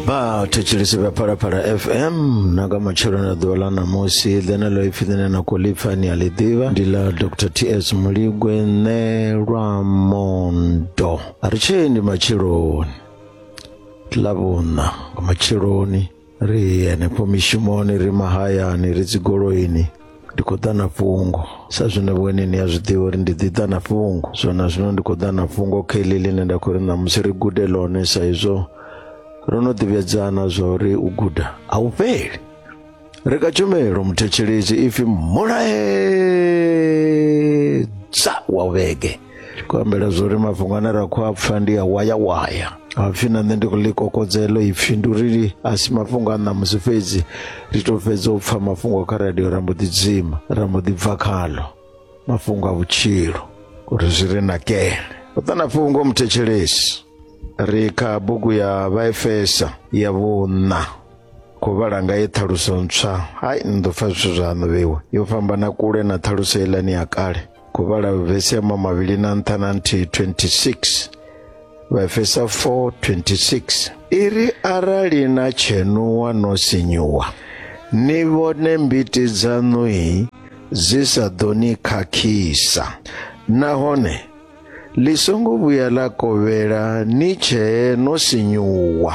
vha thetshelesi vha phalaphala fm na nga matshelo na ḓuvha ḽa ṋamusi ḽene ḽo ipfi ḽine na khou lipfa ni a ḽi ḓivha ndi ḽa dr ts muligwe ṋe lwa mondo a ri tshee ndi matsheloni ḽa vhuṋa nga matsheloni ri henefho mishumoni ri mahayani ri dzigoloini ndi khou ḓa na fhungo sa zwine vhone ni a zwi ḓivha uri ndi ḓi ḓa na fhungo so na zwino ndi khou ḓa na fhungo kha iḽi ḽine nda khou ri ṋamusi ri gude ḽone sa izwo ro no ḓivhedzana zwa uri u guda a u fheli ri ka tshumelo muthetshelesi ipfi mulaedza wa vhege tshi khou ambela zwo ri mafhungo ane ra khou a pfa ndi a wayawaya hapfi na nṋe ndi khou ḽi kokodzelo ipfhi ndi uri a si mafhungo a ṋamusi fhedzi ri tou fhedza u pfa mafhungo kha radio ra mbo ḓi dzima ra mbo ḓi bva khalo mafhungo a vhutshilo uri zwi ri nakele u ṱana fhungo muthetshelesi ri kha bugu ya vhaefesa ya vhuṋa khou vhala nga ye ṱhaluso ntswa hai ni ḓo pfa zwithu zwaṋu vhewe yo fhambana kule na ṱhaluso iḽani ya kale khou vhala vhesi ya mamavhili na nṱha na nthihi 26 vhaefesa 4 26 i ri arali na tshenuwa no sinyuwa ni vhone mbiti dzaṋui dzi sa ḓo ni khakhisa nahone ḽi songo vhuya ḽa kovhela ni tshee no sinyuwa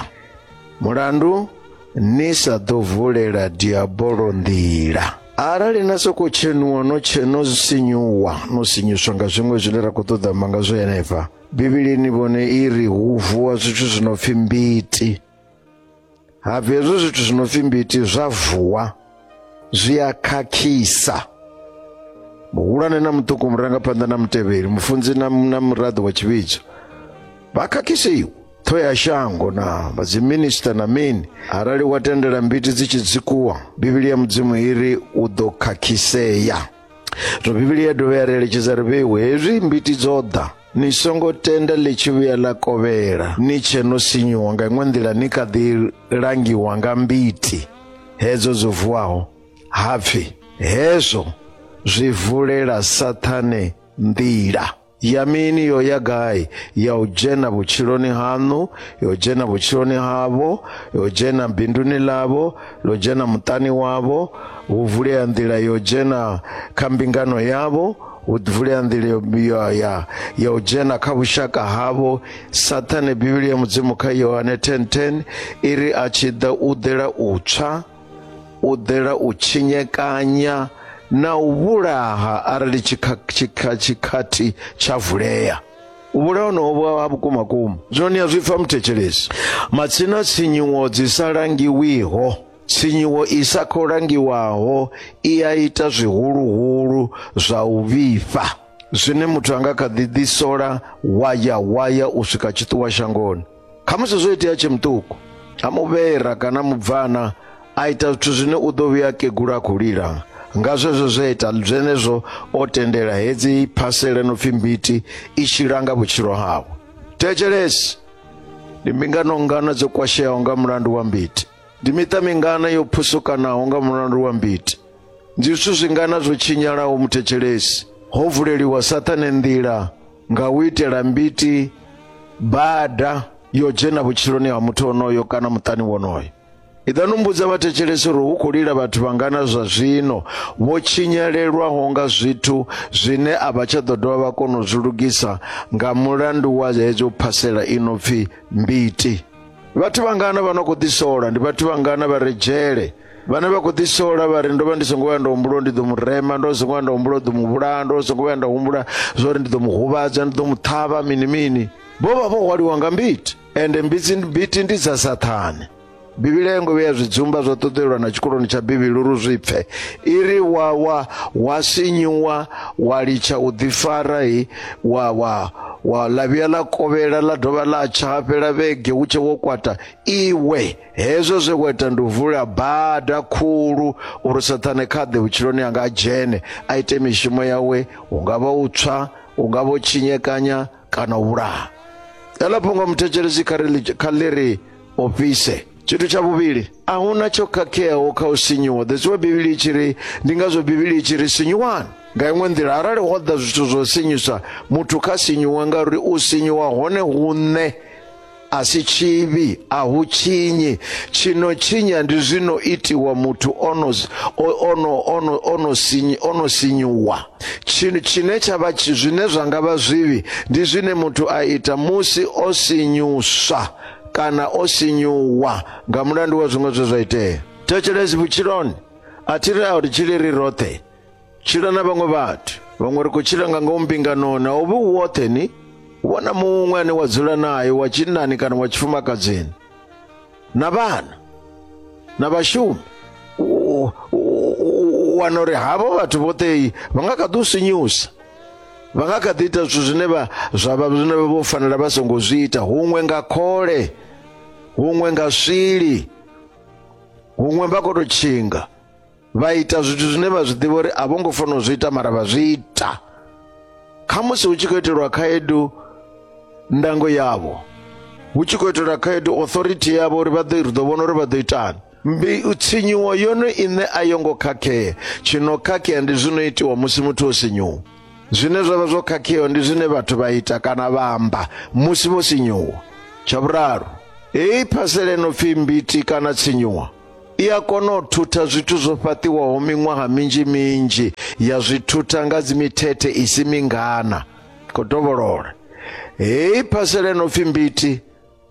mulandu ni sa ḓo vulela diabolo nḓila arali na sokou tshenuwa no tsheno sinyuwa no sinyuswa nga zwiṅwe zwine ra khou ṱoḓa amba nga zwo henefha bivhilini vhone i ri hu vuwa zwithu zwi no pfhi mbiti ha bvi hezwo zwithu zwi no pfhi mbiti zwa vuwa zwi a khakhisa muhulwane na muṱuku murangaphanḓa na mutevheli mufunzi na, na muraḓo wa tshivhidzo vha khakhisiwa ṱhoho ya shango na vhadziminista na mini arali wa tendela mbiti dzi tshi dzikuwa bivhili ya mudzimu i ri u ḓo khakhisea zwo bivhili ya dovha ya ri eletshedza ri vheiwe hezwi mbiti dzo ḓa ni songo tenda ḽi tshi vhuya ḽa kovhela ni tshe no sinyuwa nga iṅwe nḓila ni kha ḓi langiwa nga mbiti hedzo dzo vuwaho ha pfi hezwo zwi vulela sathane nḓila ya mini yo ya gai ya u dzhena vhutshiloni haṋu yo dzhena vhutshiloni havho yo dzhena binduni ḽavho ḽo dzhena muṱani wavho hu vulea nḓila yo dzhena kha mbingano yavho hu ḓi vulea nḓila yo ya ya ya u dzhena kha vhushaka havho sathane bivhili ya mudzimu kha yohane 1010 i ri a tshi ḓa u ḓela u tswa u ḓela u tshinyekanya na u vhulaha arali tshikhathi tsha vulea u vhulaha honoho ha vhukuma kuma zwone ya zwi pfa muthetshelesi matsina tshinyuwo dzi sa langiwiho Tshinyiwo i sa khou langiwaho i a ita zwihuluhulu zwa u vhifha zwine muthu a nga kha ḓi ḓisola waya waya u swika tshiṱuwa shangoni khamusi zwo itea tshe muṱuku a muvhera kana mubvana a ita zwithu zwine u ḓo vhuya kegula a khou lila nga zwezwo zwe ita zwenezwo o tendela hedzi phasele no pfhi mbiti i tshi langa vhutshilo hawe thetshelesi ndi mbingano ngana dzo kwasheaho nga mulandu wa mbiti ndi miṱa mingana yo phusukanaho nga mulandu wa mbiti ndi zwithu zwingana zwo tshinyalaho muthetshelesi ho vuleliwa saṱhane nḓila nga u itela mbiti bada yo dzhena vhutshiloni ha muthu onoyo kana muṱani wonoyo iḓa no mbudza vhathetshelesi uri hu khou lila vhathu vhangana zwa zwino vho tshinyalelwaho nga zwithu zwine a vha tsha ḓo dovha vha kona u zwi lugisa nga mulandu wa hedzo phasela i no pfi mbiti vhathu vhangana vha no khou ḓisola ndi vhathu vhangana vha re dzhele vhane vha khou ḓisola vha ri ndo vha ndi songo vhuya nda humbula ndi ḓo mu rema ndo songo vhuya nda humbula ḓo mu vhulaya ndo songo vhuya nda humbula zwa uri ndi ḓo mu huvhadza ndi ḓo mu ṱhavha mini mini vho vha vho hwaliwa nga mbiti ende mbiti mbiti ndi dza sathane bivhili a yo ngo vheya zwidzumba zwa ṱoḓelwa na tshikoloni tsha bivhili uri zwi pfe i ri wa wa wa sinyiwa wa litsha u ḓifara hi wa wa wa ḽa vhuya ḽa kovhela ḽa dovha ḽa tsha ha fhela vhege hu tshe wo kwata iwe hezwo zwe wa ita ndi u vula bada khulu uri sathane kha ḓe vhutshiloni anga a dzhene a ite mishumo yawe hu nga vha u tswa u nga vho tshinyekanya kana u vhulaha eḽo phongo muthetshelesi kha ri kha ḽi ri ofise tshithu tsha vhuvhili a hu na tsho khakheaho kha u sinyuwa that's why bivhili i tshi ri ndi ngazwo bivhili i tshi ri sinyuwani nga iṅwe nḓila arali ho ḓa zwithu zwo sinyusa muthu kha sinyuwe ngauri u sinyuwa hone huṋe a si tshivhi a hu tshinyi tshino tshinya ndi zwino itiwa muthu ono ono ono ono sinyi ono sinyuwa tshino tshine tsha vha tshi- zwine zwa nga vha zwivhi ndi zwine muthu a ita musi o sinyuswa kana o sinyuwa nga mulandu wa zwiṅwe zwe zwa itea thetshelesi vhutshiloni a thi ri a ri tshile ri roṱhe tshila na vhaṅwe vhathu vhaṅwe ri khou tshila nga ngomu mbinganoni a u vhi u woṱhe ni wana muṅwe ane wa dzula naye wa tshinnani kana wa tshifumakadzini na vhana na vhashumi u- u- u- u wana uri havho vhathu vhoṱhe vha nga kha ḓi u sinyusa vha nga kha ḓi ita zwithu zwine vha zwa vha zwine vha vho fanela vha songo zwi ita huṅwe nga khole huṅwe nga swili huṅwe vha khou tou tshinga vha ita zwithu zwine vha zwi ḓivha uri a vho ngo fanela u zwi ita mara vha zwi ita khamusi hu tshi khou itelwa khaedu ndango yavho hu tshi khou itelwa khaedu authority yavho uri vha ḓo ri ḓo vhona uri vha ḓo itani mbi tshinyiwo yone ine a yo ngo khakhea tshi no khakhea ndi zwi no itiwa musi muthu o sinyuwa zwine zwa vha zwo khakheaho ndi zwine vhathu vha ita kana vha amba musi vho sinyuwa tsha vhuraru heyi phasela ino pfi mbiti kana tshinyuwa i a kona u thutha zwithu zwo fhaṱiwaho miṅwaha minzhi minzhi ya zwi thutha nga dzimithethe i si mingana khou dovholola heyi phasela ino pfi mbiti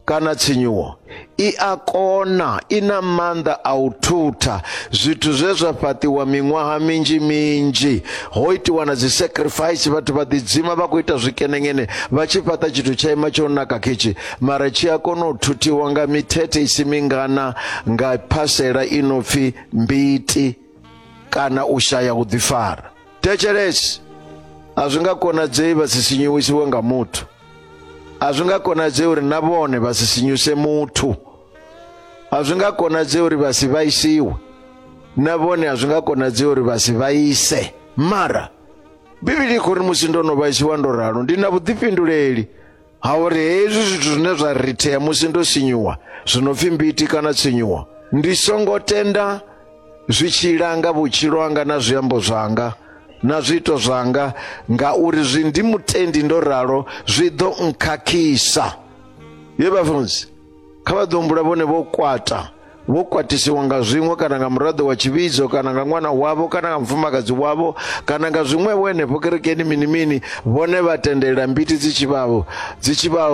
kana tshinyuwo i a kona i na maanḓa a u thutha zwithu zwe zwa fhaṱiwa miṅwaha minzhi minzhi ho itiwa na dzi sacrifice vhathu vha ḓidzima vha khou ita zwikenengene vha tshi fhaṱa tshithu tsha ima tsho naka khetshi mara tshi a kona u thuthiwa nga mithethe isi mingana nga phasela i no pfi mbiti kana u shaya u ḓifara thetshelesi a zwi nga konadzei vha si sinyuwisiwe nga muthu a zwi nga konadzei uri na vhone vha si sinyuse muthu a zwi nga konadzei uri vha si vhaisiwe na vhone a zwi nga konadzei uri vha si vhaise mara bivhili i khou ri musi ndo no vhaisiwa ndo ralo ndi na vhuḓifhinduleli ha uri hezwi zwithu zwine zwa rithea musi ndo sinyuwa zwi no pfi mbiti kana tsinyuwa ndi songo tenda zwi tshi langa vhutshilo hanga na zwiambo zwanga na zwiito zwanga ngauri zwi ndi mutendi ndo ralo zwi ḓo nkhakhisa ye vhafunzi kha vha ḓo humbula vhone vho kwata vho kwatisiwa nga zwiṅwe kana nga muraḓo wa tshivhidzo kana nga ṅwana wavho kana nga mufumakadzi wavho kana nga zwiṅwe vho henefho kerekeni mini mini vhone vha tendelela mbiti dzi tshi vha dzi tshi vha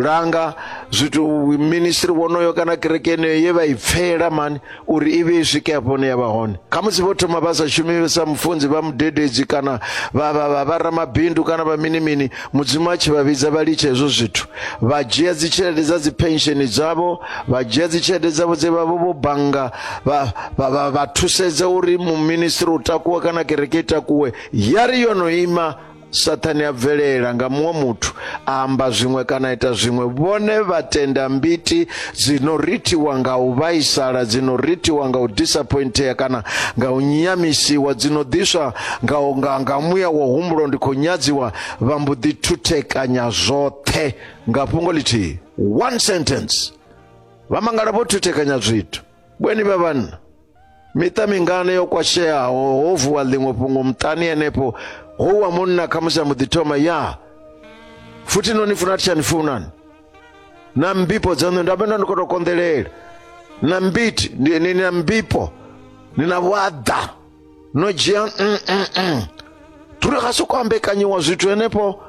langa zwithu ministry wonoyo kana kerekeni ye vha i pfela mani uri i vhe i swike hafho hune ya vha hone khamusi vho thoma vha sa shumi sa mufunzi vha mudededzi kana vha vha vha vha ramabindu kana vha mini mini mudzimu a tshi vha vhidza vha litsha hezwo zwithu vha dzhia dzi tshelede dza dzi pensheni dzavho vha dzhia dzi tshelede dzavho dze vha vho vho bannga vha vha- vha vha thusedza uri muministri u takuwa kana kereke i takuwe ya ri yo no ima Sathane a bvelela nga muṅwe muthu a amba zwiṅwe kana ita zwiṅwe vhone vha tenda mbiti dzi no rithiwa nga u vhaisala dzi no rithiwa nga u disappointea kana nga u nyamisiwa dzi no ḓiswa nga nga nga muya wa humbulo ndi khou nyadziwa vha mbo ḓi thuthekanya zwoṱhe nga fhungo ḽithihi one sentence vha mangala vho thuthekanya zwithu vhweni vha vhanna miṱa mingana yo kwasheaho ho vuwa ḽiṅwe fhungo muṱani henefho ho wa munna khamusi a mbo ḓi thoma ya futhi no ni funa thi tsha ni funani na mbipo dzaṋu nda vhenda ndi khou tou konḓelela na mbiti ni na mbipo ni na vhuaḓa no dzhia mm, mm, mm. turi ga se kwambekanyiwa zwithu henefho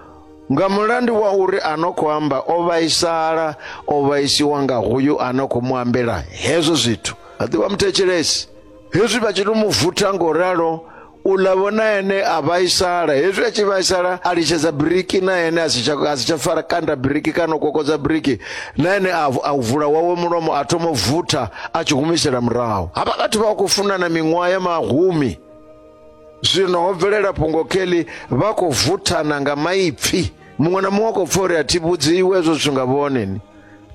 nga mulandu wa uri a no khou amba o vhaisala o vhaisiwa nga hoyu a no khou mu ambela hezwo zwithu a ḓivha muthetshelesi hezwi vha tshi to mu vutha ngo ralo u ḽa vhona ene a vhaisala hezwi a tshi vhaisala a litshedza biriki na ene a si tsha a si tsha fara kanda biriki kana u kokodza biriki na ene a a vula wawe mulomo a thoma u vutha a tshi humisela murahu havha vhathu vha khou funana miṅwaha ya mahumi zwino ho bvelela fhungo kheli vha khou vuthana nga maipfi muṅwe na muṅwe a khou pfa uri a thi vhudziwe hezwo zwithu nga vhoneni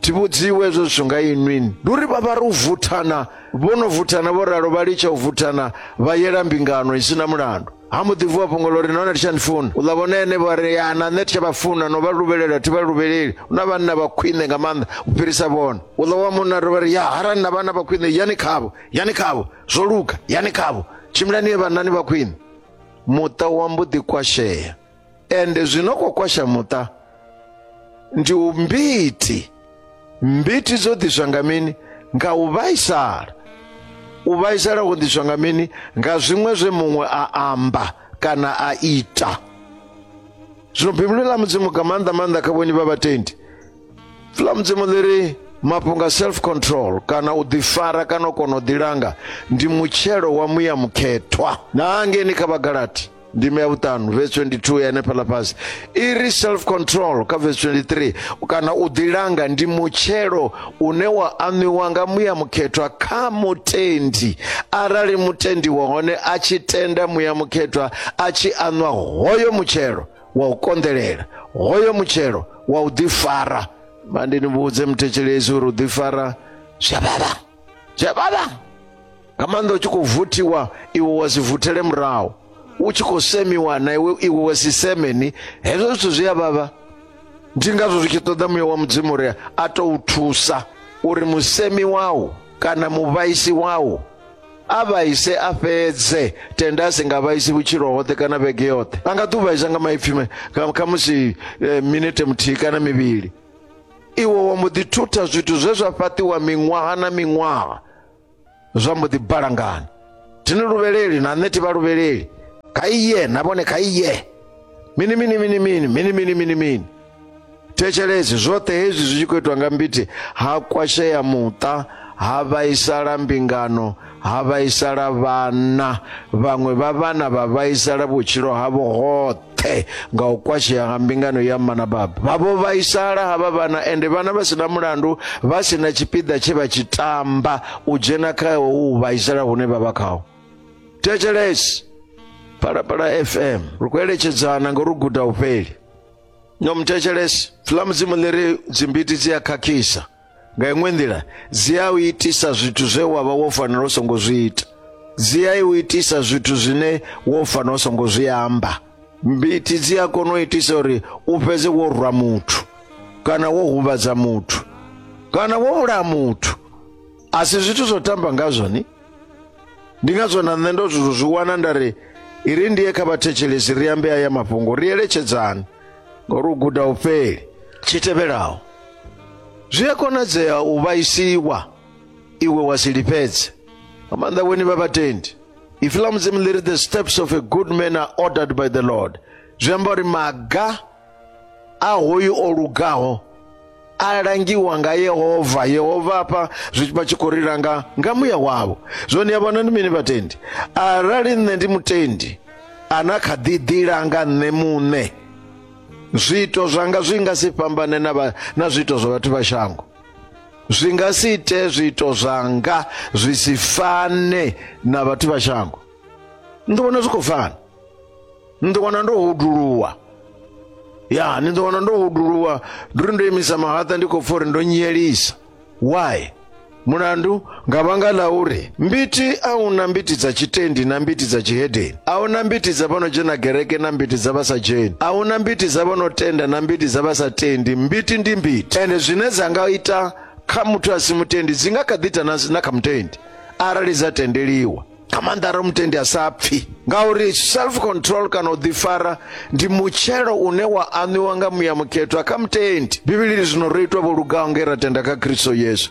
thi vhudziwe hezwo zwithu nga inwini ndi uri vha vha ri u vuthana vho no vuthana vho ralo vha litsha u vuthana vha yela mbingano i si na mulandu ha mbo ḓi vuwa fhongolo uri nahone titsha ndifuna u ḽa vhone ene vha ri ya na nṋe titsha vha funa no vha luvhelela thi vha luvheleli hu na vhanna vha khwine nga maanḓa u fhirisa vhone u ḽa wa munna ri vha ri ya harali na vhanna vha khwine yani khavho yani khavho zwo luga yani khavho tshimbilani ye vhannani vha khwine muṱa wa mbo ḓi kwashea ende zvinokokwasha muta ndi umbiti mbiti dzodhiswa nga mini nga u vhaisala u vhaisala ho ḓiswa nga mini nga zwiṅwe zwe muṅwe a amba kana a ita zwino bivhili ḽa mudzimu nga maanḓa maanḓa kha vhonyi vha vhatendi ḽa mudzimu ḽi ri mafhungo a self control kana u ḓifara kana u kona u ḓilanga ndi mutshelo wa muya mukhethwa na hangeni kha vhagalati ndime ya vhuṱanu vesi 22 ya henefhaḽa fhasi i ri self control kha vesi 23 kana u ḓilanga ndi mutshelo une wa aṋwiwa nga muya mukhethwa kha mutendi arali mutendi wa hone a tshi tenda muya mukhethwa a tshi aṋwa hoyo mutshelo wa u konḓelela hoyo mutshelo wa u ḓifara mandi ni vhudze muthetshelesi uri u ḓifara zwi a vhavha dzhavhala nga maanḓa u tshi khou vuthiwa iwe wa si vuthele murahu u tshi khou semiwa na iwe iwe wa si semeni hezwo zwithu zwi a vhavha ndi ngazwo zwi tshi ṱoḓa muya wa mudzimu uri a tou thusa uri musemi wau kana muvhaisi wau a vhaise a fhedze tenda a si nga vhaisi vhutshilo hoṱhe kana vhege yoṱhe a nga ḓi u vhaisa nga maipfi khamusi eh, minete muthihi kana mivhili iwe wa mbo ḓi thutha zwithu zwe zwa fhaṱiwa miṅwaha na miṅwaha zwa mbo ḓi balangana thini luvheleli na nṋe thivha luvheleli kha iye na vhone kha iye mini mini mini mini mini mini mini mini thetshelesi zwoṱhe hezwi zwi tshi khou itwa nga mbiti ha kwashea muṱa ha vhaisala mbingano ha vhaisala vhana vhaṅwe vha vhana vha vhaisala vhutshilo havho hoṱhe pfe nga u kwashea nga mbingano ya mma na baba vhavho vhaisala havha vhana ende vhana vha sina mulandu vha sina tshipiḓa tshe vha tshi tamba u dzhena kha u vhaisala hune vha vha khaho thetshelesi phalaphala fm ri khou eletshedzana ngo ri guda u fheli no muthetshelesi fula mudzimu ḽi ri dzimbiti dzi a khakhisa nga iṅwe nḓila dzi a u itisa zwithu zwe wa vha wo fanela u songo zwi ita dzi a u itisa zwithu zwine wo fanela u songo zwi amba mbiti dzi a kona u itisa uri u fhedze wo rwa muthu kana wo huvhadza muthu kana wo vhulaya muthu a si zwithu zwo tamba ngazwo ni ndi ngazwo na nṋe ndo zwi wana nda ri i ri ndiye kha vhathetshelesi ri ambe aya mafhungo ri eletshedzani Ngauri u guda u fheli. Tshi tevhelaho, zwi a konadzea u vhaisiwa iwe wa si lifhedze. Nga maanḓa vhoni vha vhatendi. Ipfi ḽa Mudzimu ḽi ri the steps of a good man are ordered by the Lord. Zwi amba uri maga a hoyu o lugaho a langiwa nga yehova yehova hafha zwi vha tshi khou ri langa nga muya wavho zwone ya vhona ndi mini vhatendi arali nṋe ndi mutendi ana kha ḓi ḓilanga nṋe muṋe zwiito zwanga zwi nga si fhambane na, vha, na zwiito zwa vhathu vha shango zwi nga si ite zwiito zwanga zwi si fane na vhathu vha shango ndi vhona zwi khou fana ni ḓo wana ndo huduluwa ya ni ḓo wana ndo huduluwa ndi uri ndo imisa mahaṱa ndi khou pfa uri ndo nyelisa why mulandu nga vhanga ḽa uri mbiti a hu na mbiti dza tshitendi na mbiti dza tshihedeni a hu na mbiti dza vha no dzhena gereke na mbiti dza vha sa dzheni a hu na mbiti dza vha no tenda na mbiti dza vha sa tendi mbiti ndi mbiti ende zwine dza nga ita kha muthu a si mutendi dzi nga kha ḓi ita na na kha mutendi arali dza tendeliwa nga maanḓa arali mutendi a sa pfhi ngauri self control kana u ḓifara ndi mutshelo une wa aṋwiwa nga muya mukhethwa kha mutendi bivhili ri zwino ro itwa vho lugaho nge ra tenda kha khristo yesu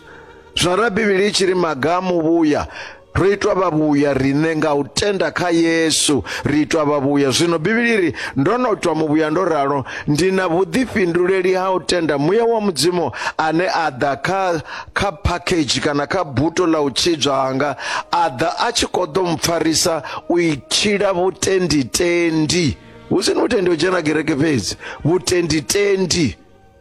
zwino ra bivhili i tshi ri maga a muvhuya ro itwa vhavhuya riṋe nga u tenda kha yesu ri itwa vhavhuya zwino bivhili ri ndo no twa muvhuya ndo ralo ndi na vhuḓifhinduleli ha u tenda muya wa mudzimu ane a ḓa kha kha phakhedzhi kana kha buto ḽa u tshidzwa hanga a ḓa a tshi kho ḓo mpfarisa u itshila vhutenditendi hu si ni vhutendi u dzhena kereke fhedzi vhutenditendi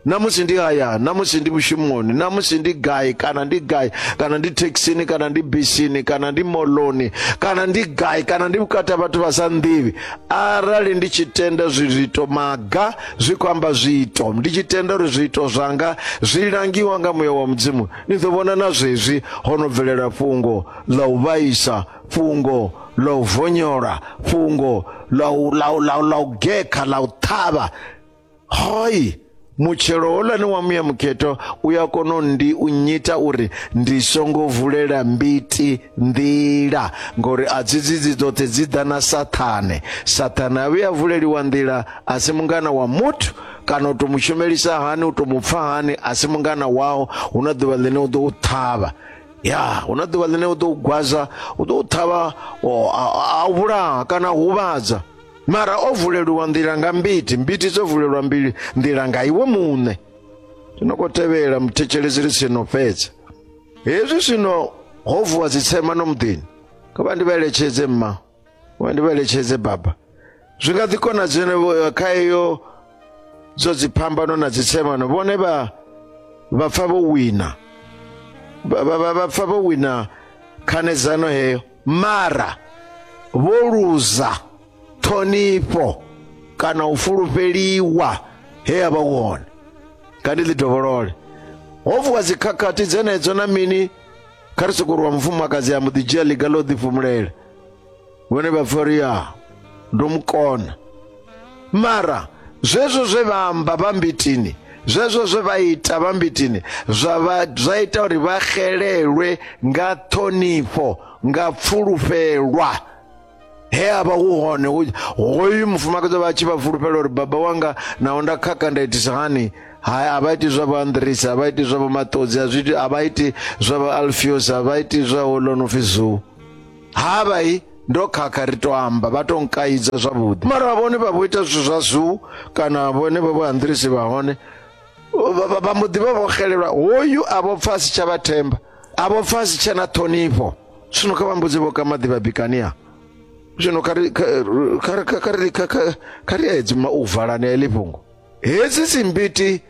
namusi ndi hayani namusi ndi mushumoni namusi ndi gai kana ndi gai kana ndi thekhisini kana ndi bisini kana ndi moloni kana ndi gai kana ndi vhukati ha vhathu vha sa nḓivhi arali ndi tshi tenda zwiito maga zwi khou amba zwiito ndi tshi tenda uri zwiito zwanga zwi langiwa nga muya wa mudzimu ni ḓo vhona na zwezwi ho no bvelela fhungo ḽa u vhaisa fhungo ḽa u vonyola fhungo ḽa u gekha ḽa u ṱhavha hoi mutshelo holani wa muya mukhetho u ya kona u ndi u nyita uri ndi songo vulela mbiti nḓila ngori a dzidzi dzi dzoṱhe dzi ḓa na sathane sathane a vhuya vuleliwa nḓila a si mungana wa muthu kana u to mu shumelisa hani u to mu pfa hani a si mungana wao hu na ḓuvha ḽine u ḓo u ṱhavha ya hu na ḓuvha ḽine u ḓo u gwaza u ḓo u ṱhavha o- a- a a u vhulaha kana a u huvhadza mara o vuleliwa nḓila nga mbiti mbiti dzo vulelwa mbili nḓila nga iwe muṋe zwino khou tevhela muthetshelesi ri sino fhedza hezwi zwino ho vuwa dzitsema no muḓini kha vha ndi vha eletshedze mma wa ndi vhaeletshedze baba zwi nga ḓi konadzene kha iyo zwo dziphambano na dzitsemano vhone vha vha pfa vho wina Vha- vha vha- vha pfa vho wina khanedzano heyo mara vho luza ṱhonifho kana u fulufheliwa he ya vha wone nga ndi ḽi dovholole ho vuwa dzikhakhathi dzenedzo na mini kha ri sokou ri wa mufumakadzi ya mbo ḓi dzhia ḽiga ḽo ḓifhumulela vhone vha pfa uri ya ndo mu kona mara zwezwo zwe vha amba vha mbitini zwezwo zwe vha ita vha mbitini zwa vha- zwa ita uri vha xelelwe nga ṱhonifho nga pfulufhelwa he a vha hu hone hu- hoyu mufumakadzi vha tshi vha fulufhela uri baba wanga naho nda khakha nda itisa hani hai a vha iti zwa vho andrisa a vha iti zwa vho maṱodzi a zwi- a vha iti zwa vho alfios a vha iti zwa ho ḽo no pfi zoo ha vha i ndo khakha ri to amba vha to nkaidza zwavhuḓi mara vhone vha vho ita zwithu zwa zoo kana vhone vha vho andrisi vha hone vha- vha- vha mbo ḓi vha vho xelelwa hoyu a vho pfa a si tsha vha themba a vho pfa a si tsha na ṱhonifho Zwino kha vha mbudze vho ka maḓi vha bikania. Zwino kha ri kha kha kha ri kha kha ri edzi ma u valani eḽi fhungo. Hedzi dzimbiti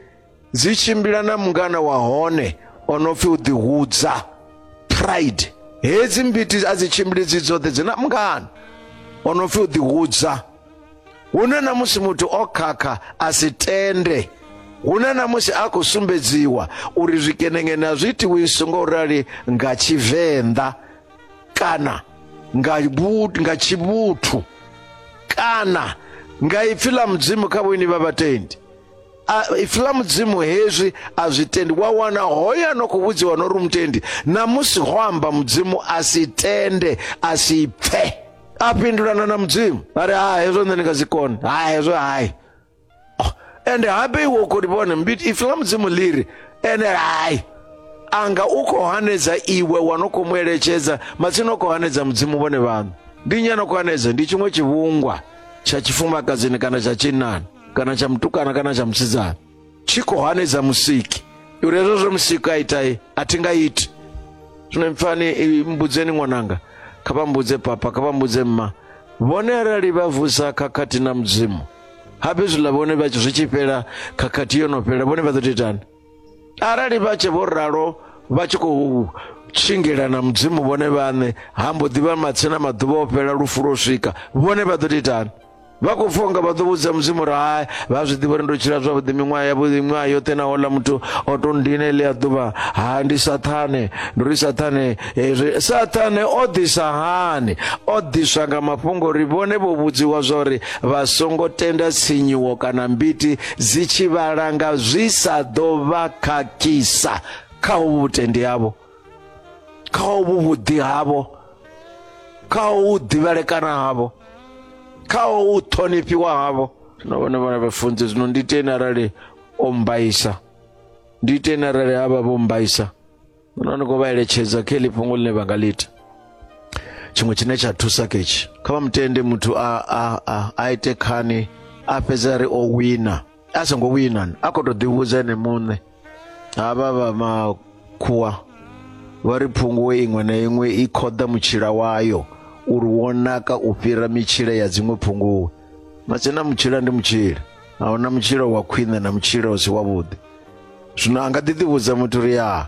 dzi tshimbila na mungana wa hone o no pfi u ḓihudza pride. Hedzi mbiti a dzi tshimbili dzi dzoṱhe dzi na mungana o no pfi u ḓihudza. hune na musi muthu o khakha a si tende hune na musi a khou sumbedziwa uri zwikenengene a zwi itiwisi ngo rali nga tshivenḓa kana nga vhu- nga tshivhuthu kana nga ipfi ḽa mudzimu kha vhoini vha vhatendi A- ipfi ḽa mudzimu hezwi a zwi tendi wa wana hoyo ano khou vhudziwa no ri mutendi na musi ho amba mudzimu a si tende a si pfe a fhindulana na mudzimu a ri ha hezwo nṋe ndi nga si kone ha hezwo hai oh, ende habe iwe u khou livhona mbiti ipfi ḽa mudzimu ḽi ri ende hai anga u khou hanedza iwe wa no khou mu eletshedza matsina u khou hanedza mudzimu vhone vhaṋu ndi nyana khou hanedza ndi tshiṅwe tshivhungwa tsha tshifumakadzini kana tsha tshinnani kana tsha mutukana kana tsha musidzana tshi khou hanedza musiki uri hezwo zwe musiki a itai a thi nga iti zwino mpfani mbudzeni ṅwananga kha vha mbudze papa kha vha mbudze mma vhone arali vha vusa khakhathi na mudzimu habe zwiḽa vhone vha zwi tshi fhela khakhathi yo no fhela vhone vha ḓo tou itani arali vha tshe vho ralo vha tshi khou tshingela na mudzimu vhone vhaṋe ha mbo ḓivha matsina maḓuvha o fhela lufu lwo swika vhone vha ḓo tou itani vha khou pfha unga vha ḓo vhudza mudzimu uri hai vha zwi ḓivha uri ndo tshila zwavhuḓi miṅwaha ya vhuḓi miṅwaha yoṱhe na hola muthu o to ndine ḽi a ḓuvha ha ndi sathane ndi uri sathane hezwi eh, sathane o ḓisa hani o ḓiswa nga mafhungo uri vhone vho vhudziwa zwa uri vha songo tenda tsinyiwo kana mbiti dzi tshi vhalanga zwi sa ḓo vha khakhisa kha uvhu vhutendi havho kha hovhu vhuḓi havho kha hovhu ḓivhelekana havho kha hovhu ṱhonifhiwa havho na vhone vhana vhafunzi zwino ndi iteni arali o mbaisa ndi iteni arali havha vho mbaisa no ni khou vha eletshedza kha heḽi fhungo ḽine vha nga ḽi ita tshiṅwe tshine tsha thusa ketshi kha vha mutende muthu a, a, a, a ite khani a fhedza ri o wina a songo wina a khou tou ḓivhudza ene muṋe havha vha makhuwa vha ri phunguwe iṅwe na iṅwe i khoḓa mutshila wayo uri wo naka u fhira mitshila ya dziṅwe phunguwe matsina mutshila ndi mutshila a huna mutshila wa khwine na mutshila u si wavhuḓi zwino a nga ḓi ḓivhudza muthu uri ya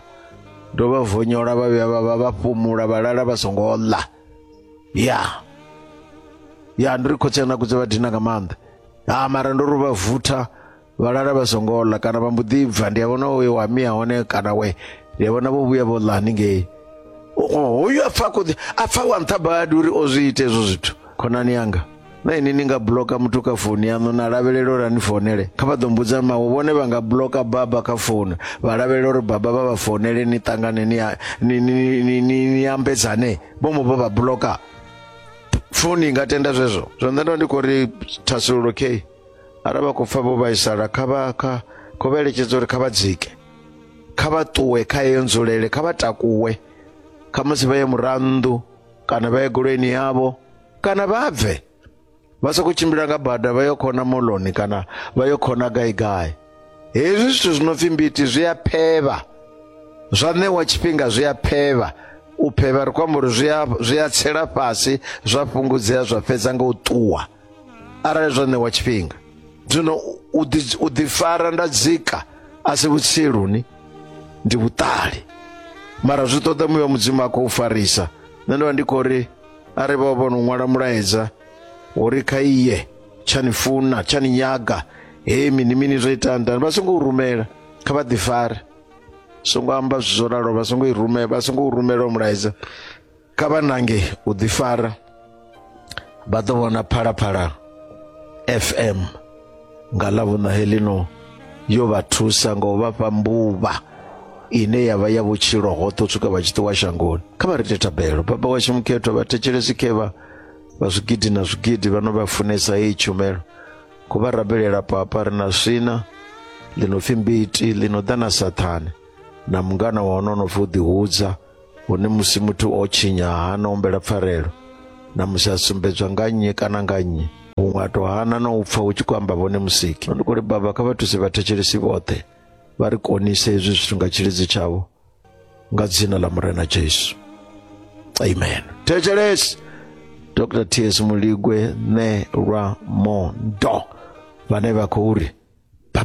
ndo vha vonyola vha vhuya vha vha vha fhumula vha lala vha songo ḽa ya ya ndi ri khotsi ana kudze vha dina nga maanḓa ah mara ndo ri vha vutha vha lala vha songo ḽa kana vha mbo ḓi bva ndi a vhona we wa mia hone kana we ndi a vhona vho vhuya vho ḽa haningei hoyu a pfa a khou ḓi a pfa wa nṱha badi uri o zwi ite hezwo zwithu khonani yanga na ini ni nga bloka muthu kha founu yaṋu na lavhelela uri ani founele kha vha ḓo mbudza mawe vhone vha nga bloka baba kha founu vha lavhelela uri baba vha vha founele ni ṱangane ni ambedzane vho mo vha vha bloka founu i nga tenda zwezwo zwo nṋe ndo ndi khou ri thasululo k arali vha khou pfa vho vhaisala kha vha kha khou vha eletshedza uri kha vha dzike kha vha ṱuwe kha yeyo nzulele kha vha takuwe kha musi vha ye murannḓu kana vha ye goloini yavho kana vha bve vha sokou tshimbila nga bada vha yo khona moloni kana vha yo khona gai gai hezwi zwithu zwi no pfi mbiti zwi a phevha zwa ṋewa tshifhinga zwi a phevha u phevha ri khou amba uri zwi a zwi a tsela fhasi zwa fhungudzea zwa fhedza nga u ṱuwa arali zwa ṋewa tshifhinga zwino u ḓi- u ḓifara nda dzika a si vhutsiluni ndi vhuṱali mara zwi ṱoḓa muya wa mudzimu a khou farisa nṋe ndo vha ndi khou ri a ri vha vho no ṅwala mulaedza uri kha iye tsha ni funa tsha ni nyaga hei mini mini zwo ita ndani vha songo u rumela kha vha ḓifare songo amba zwithu zwo ralo vha songo i rumela vha songo u rumela u mulaedza kha vha nange u ḓifara vha ḓo vhona phalaphala fm nga ḽavhuṋa helino yo vha thusa nga u vha fha mbuvha ine ya vha ya vhutshilo hoṱhe u swika vha tshi ṱuwa shangoni kha vha ri tethabelo baba washu mukhethwa vha thetshelesi khevha vha zwigidi na zwigidi vha no vha funesa heyi tshumelo ku vha rabelela papa ri na swina ḽi no pfi mbiti ḽi no ḓa na sathane na mungana wa hone o no pfi u ḓihudza hune musi muthu o tshinya hana ombela pfarelo na musi a sumbedzwa nga nnyi kana nga nnyi huṅwe a to hana na u pfa hu tshi khou amba vhone musiki ndi kuli baba kha vha thuse vhathetshelesi vhoṱhe vha ri konise hezwi zwithu nga tshilidzi tshavho nga dzina ḽa murena jesu amen thetshelesi dr ts muligwe ne lwa mondo vhane vha khou ri bye